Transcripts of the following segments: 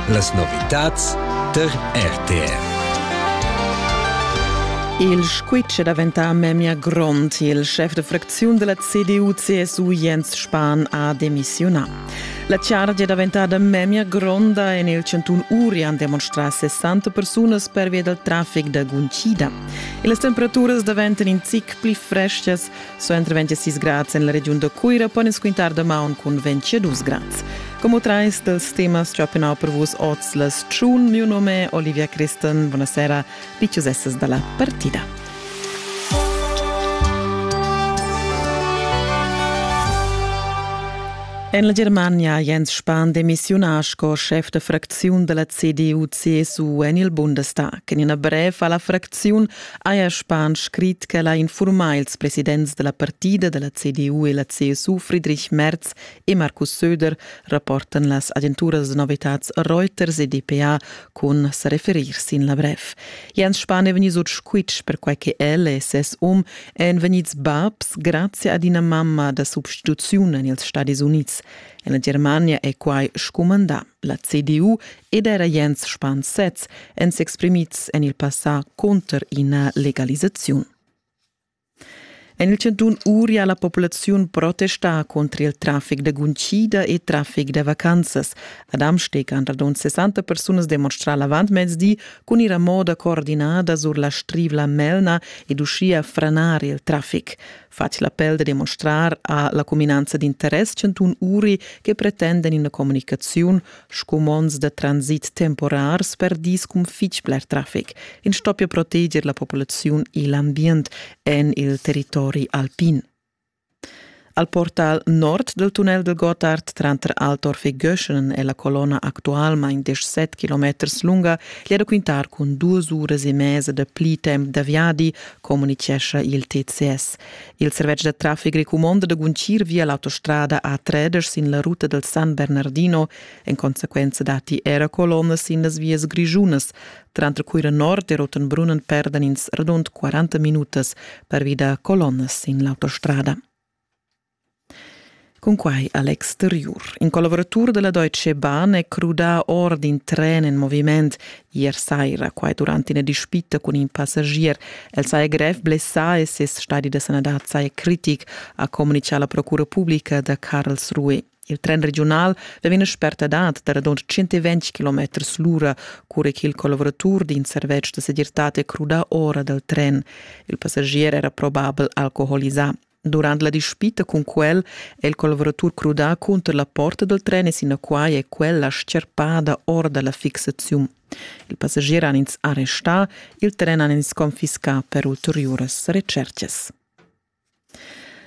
Las novitads tar RTR. Il squitsch è daventà memia grond. Il chef de fracziun della CDU-CSU Jens Spahn ha demissiunà. La chargia è daventata memia gronda e nel 101 uri han demonstrà 60 persunas pervia del traffic da guntida. E le temperaturas daventano in zic pli freschas Suenter 26 grads en la regiun da Cuira pon ins quintar damaun cun 22 grads. Como trais dals temas chapenau per vus oz las tschun. Mio nome è Olivia Christen. Buonasera, piccius essas dalla partida. En la Germania Jens Spahn demissiunà sco schef da fracziun da la CDU-CSU en il Bundestag. En ina brev a la fracziun Aja Spahn scrit ch'el ha infurmà ils presidents da la partida da la CDU e la CSU Friedrich Merz e Markus Söder, rapportan las agenturas da novitads Reuters e dpa cun sa referir sin la brev. Jens Spahn è vegnì sut squitsch perquai che el e ses um èn vegnids babs grazie ad ina mamma da substituziun en ils Stadis Unids. En la Germania è quai scumandà. La CDU ed era Jens Spahn sez èn s'exprimids en il passà cunter ina legalisaziun. En il chantun Uria la populaziun protesta contro il traffic da guncida e traffic da vacanzas. Ad Amsteg han radund 60 persunas demonstrà l'avantmezdi cun ir a moda coordinada sur la strivla Melna ed uschia franar il traffic. Fatg l'appell da demonstrar a la cuminanza d'interess chantun Uri che pretenden ina comunicaziun Scumonds da transit temporars per dis cun fitg bler traffic. In stoppia proteger la populaziun e l'ambient en il territori alpin. Al portal nord del tunnel del Gottard tranter Altorf e Göschen e la colonna actualmain 17 km lunga gli raquintar con duas uras e mezza da pli temp da viadi, comunichescha il TCS. Il servetsch da traffic recumonda da guntgir via l'autostrada A3 sin la ruta del San Bernardino. En consequenza datti era colonnas sin las vias grischunas. Tranter Cuira Nord e Rotenbrunnen perdan ins radund 40 minutas pervi da colonnas sin l'autostrada. Cunquai Alex Derriur, in collaboratur della Deutsche Bahn, è crudà or d'in tren en moviment ier saira, quai durant ina dispita cun in passagier. El saja grev blessà e ses stadi da sanadad saja critic, ha communitgà la procura publica da Karlsruhe. Il tren regiunal vegn ina spertadad da radund 120 km l'ura, cura ch'il collaboratur d'in servetsch da segirtad è crudà ora dal tren. Il passagier era probabel alcoholisà. Durant la dispita cun quel è il colveratur crudà cunter la porta dal tren e sinaquai è quella scherpada or da la fixaziun. Il passagier han ins arrestà, il tren han ins confiscà per ulteriuras recercas.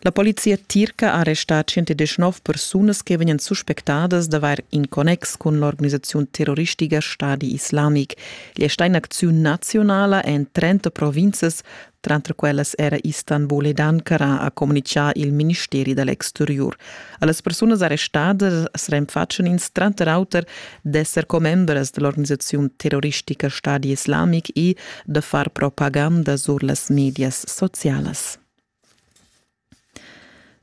La polizia tirca ha arrestà 119 persunas che vegnan suspectadas d'avair in connex cun l'organisaziun terroristica Stadi Islamic. Gli è sta in acziun nazionala en 30 provinzas Tranter quellas era Istanbul ed Ankara, ha communitgà il ministeri da l'exteriur. A las persunas arrestadas as renfatschan ins tranter auter d'esser commembras da l'organisaziun terroristica Stadi Islamic e da far propaganda sur las medias socialas.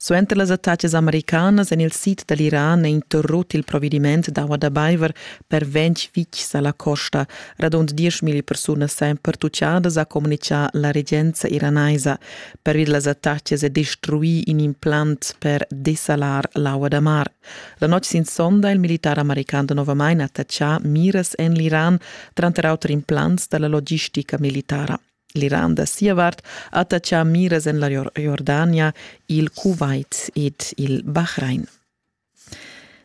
Suenter las attacas americanas en il sid da l'Iran è interrut il provediment d'aua da baiver per ventg vitgs a la costa. Radund dieschmilli persunas èn pertutgadas, ha communitgà la regenza iranaisa. Pervi da las attacas è destruì in implant per desalar l'aua da mar. La notg sin sonda è il militar american novamain attachà miras en l'Iran, tranter auter implants da la logistica militara. L'Iran da sia vart attatga miras en la Jordania, il Kuwait ed il Bahrain.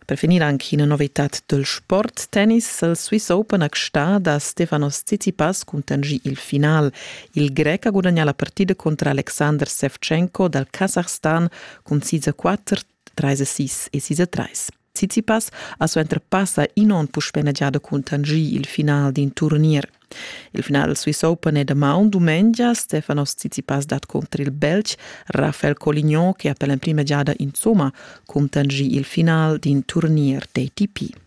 Per finir anche una novità del sport tennis. Il Swiss Open a Sta da Stefanos Tsitsipas contingì il final. Il Grec ha guadagnato la partita contro Alexander Sevchenko dal Kasachstan con 4 treis e sis e sis e treis. Tsitsipas ha suenter passa in onn puspè giada cuntanschì il final d'in turnier. Il final dal Swiss Open è damaun dumengia. Stefanos Tsitsipas dat contro il Belg Rafael Colignon che ha per l'emprima giada insomma cuntanschì il final d'in turnier d'ATP.